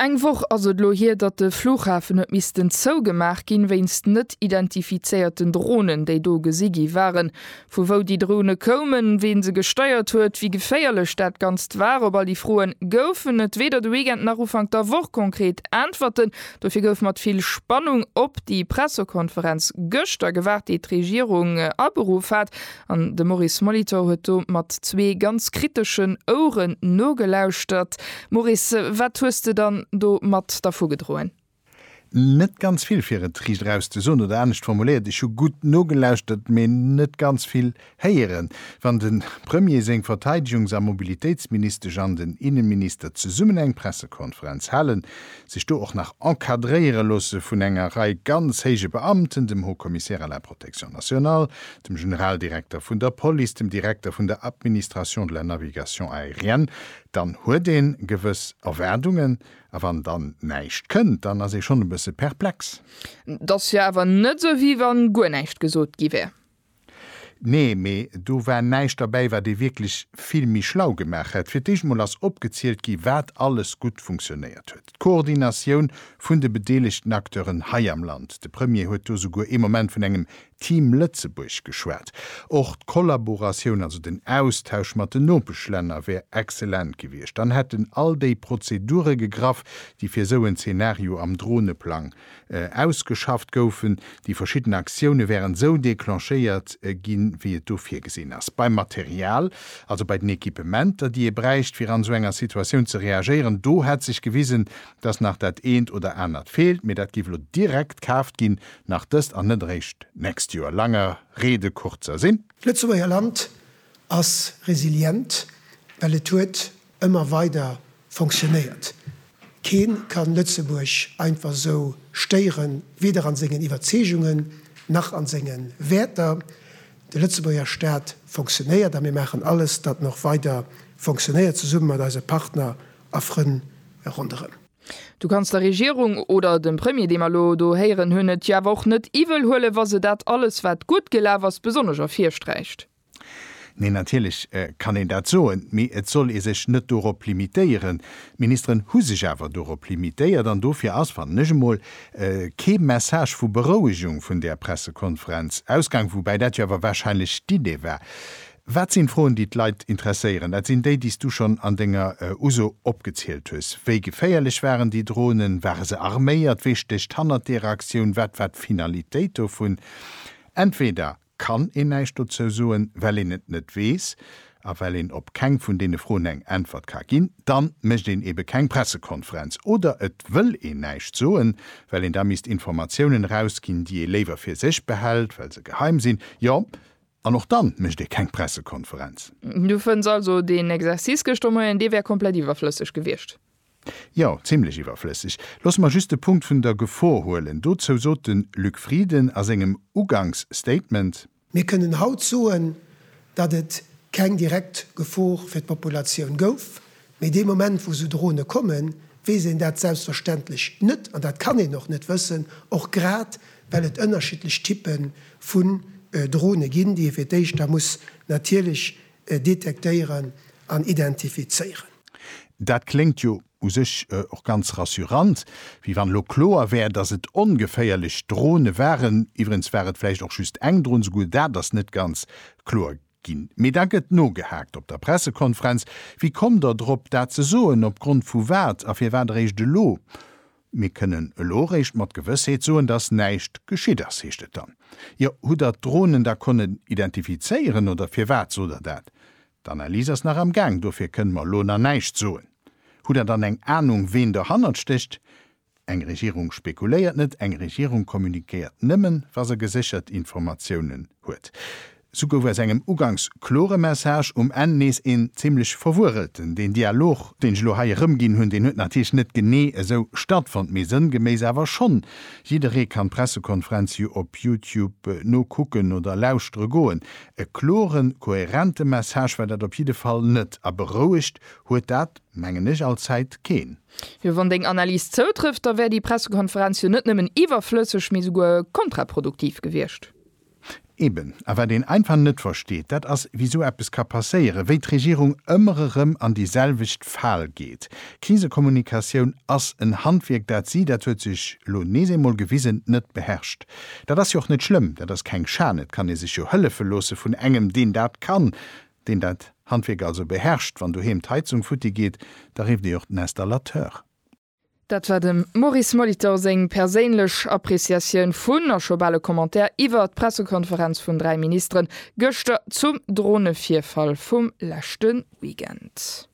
Eng Woch ass et elo hier, datt de Flughafen huet missten zougemaach ginn, wéinst net identifizéierten Dronen, déi do gesi gi waren. Vu wou déi Drone koumen, ween se gesteiert huet, wéi geféierlech dat Ganzt war, op all déi Froen goufen et weder de Weekend nach Ufank der Woch konkret Äntwerten. Dofir gouf mat vill Spannung op déi Pressekonferenz gëschter gewaart, déi d'Regierung aberuff hat. An de Maurice Molitor huet do mat zwee ganz kriteschen Ouren nogelauschtert. Maurice, wat hues de dann do mat dervugedroen? Net ganz vill, fir et riicht eraus ze soen. Oder anescht formuléiert, ech hu gutt nogelauschtert, mee net ganz vill héieren. Wann de Premier, seng Verteidegungs a Mobilitéitsministesch an den Innenminister zesummen eng Pressekonferenz halen, sech do och nach encadréiere loosse vun enger Rei ganz héije Beamten, dem Haut-Commissaire à la Protection nationale, dem Generaldirekter vun der Police, dem Direkter vun der Administration de la navigation aérienne, dann huet ee gewëss Erwaardungen. A wann dann näischt kënnt, dann ass ee schonn e bësse perplex. Et ass jo awer net esou, wéi wa guer näischt gesot gi wär. Nee, mee do war näischt derbäi, wat ee wierklech vill méi schlau gemaach hätt. Fir d'éischt emol ass opgezielt gi wat alles gutt funktionéiert huet. D'Koordinatioun vun de bedeelegten Acteuren hei am Land, de Premier huet do souguer ee Moment vun engem Team Lëtzebuerg geschwat. Och d'Kollaboratioun, also den Austausch mat den Nopeschlänner wär excellent gewiescht. Dann hätten all déi Prozedure gegraff, déi fir esou en Zeenario am Droneplang ausgeschafft goufen. Déi verschidden Aktioune wären esou declenchéiert ginn, wéi et do virgesinn ass. Beim Material, also bei den Equipementer, déi ee bräicht, fir an esou enger Situatioun ze reagéieren, do hätt sech gewisen, dass nach dat eent oder anert feelt. Mee dat géif elo direkt kaaft ginn, nach dëst an net eréischt d'nächst Joer. Langer Rede kurzer Sinn. D'Lëtzebuerger Land ass resilient, well et huet ëmmer weider fonctionnéiert. Kee kann Lëtzebuerg einfach esou stéieren, weder an sengen Iwwerzeegungen nach an senge Wäerter. De Lëtzebuerger Staat fonctionnéiert a mir maachen alles, datt en och weider fonctionnéiert, zesumme mat eise Partner a Frënn ronderëm. Du kanns der Regierung oder dem Premier, dee mer elo do héieren hunn, et jo awer och net iwwel huelen, wa se dat alles, wat gutt gelaf ass, besonnesch ervirsträicht. Neen, natierlech kann een dat soen, mee et soll ee sech net dorop limitéieren. D'Ministeren hu sech awer dorop limitéiert an dofir ass, fannen ech emol, kee Message vu Berouegung vun där Pressekonferenz ausgaang, woubäi dat jo awer warscheinlech d'Idee war. Wat sinn d'Froen, déi d'Leit interesséieren? Dat sinn déi, déi s du schonn an denger Uso opgezielt hues. Wéi geféierlech waren déi Dronen? Ware se arméiert? Wee stécht hannert derer Aktioun? Wat war d'Finalitéit dovun? Entweder kann een näischt dozou soen, well een et net weess a well een op keng vun deene Froen eng Äntwert ka ginn, dann mécht een eebe keng Pressekonferenz. Oder et wëll een näischt soen, well een da misst Informatiounen erausginn, déi ee léiwer fir sech behält, well se geheim sinn. Jo, An och dann mécht ee keng Pressekonferenz. Du fënns also deen Exercice gëschter Moien, dee wär komplett iwwerflësseg gewiescht? Jo, zimlech iwwerflësseg. Loosse mer just de Punkt vun der Gefor huelen. Dozou sot de Luc Frieden a sengem Uganksstatement. Mir kënnen haut soen, datt et keng direkt Gefor fir d'Populatioun gouf, Mee dee Moment, wou esou Drohne kommen, weess een dat selbstverständlech net an dat kann een och net wëssen, och grad well et ënnerschiddlech Typpe vun Drohne ginn, déi ee fir d'éischt da muss natierlech detektéieren an identifizéieren. Dat kléngt jo u sech och ganz rassurant, wéi wann elo kloer wär, dass et ongeféierlech Drohne waren. Iwwregens war et vläicht och just eng Drohne, souguer dat ass net ganz kloer. Ginn. Mee da gëtt nogehaakt op der Pressekonferenz, Wéi kommt Der drop, dat ze soen? Opgrond vu wat? A firwat eréischt elo? Mir kënnen elo eréischt mat Gewëssheet soen, datt näischt geschitt ass, heescht et dann. Jo, hutt Der d'Dronen da konnen identifizéieren oder firwat sot Der dat? D'Analys ass nach am Gaang, dofir kënne mer elo nach näischt soen. Hutt Der dann eng Anung, ween dohannert stécht? Eng Regierung spekuléiert net, eng Regierung communiquéiert nëmmen, wa se geséchert Informatiounen huet. Sou gouf aus engem ugangs klore Message um Enn nees een zimlech verwurrelten. Deen Dialog, deen ech elo hei erëmginn hunn, deen huet natierlech net genee esou stattfonnt, mee sënngeméiss awer schonn. Jidderee kann d'Pressekonferenz jo op Youtube nokucken oder lauschtere goen. E klore, kohärente Message war dat op jidde Fall net, a berouegt huet dat, mengen ech, allzäit keen. Jo, wann deng Analys zoutrëfft, da wär déi Pressekonferenz jo net nëmmen iwwerflësseg, mee souguer kontraproduktiv gewiescht. Eben. A wat een einfach net versteet, dat ass, wéi esou eppes ka passéieren, wéi d'Regierung ëmmer erëm an déi selwecht Fal geet. Krisekommunikatioun ass en Handwierk, dat si, dat huet sech elo nees eemol gewisen, net beherrscht. Dat ass jo och net schlëmm, dat ass keng Schan, et kann ee sech jo hëllefe loosse vun engem, deen dat kann. deen dat Handwierk also beherrscht, wann doheem d'Heizung futti geet, da rifft ee och den Installateur. Dat war dem Maurice Molitor seng perséinlech Appreciatioun vun, a scho bal e Commentaire iwwer, d'Pressekonferenz vun 3 Ministeren gëschter zum Dronevirfall vum leschte Weekend.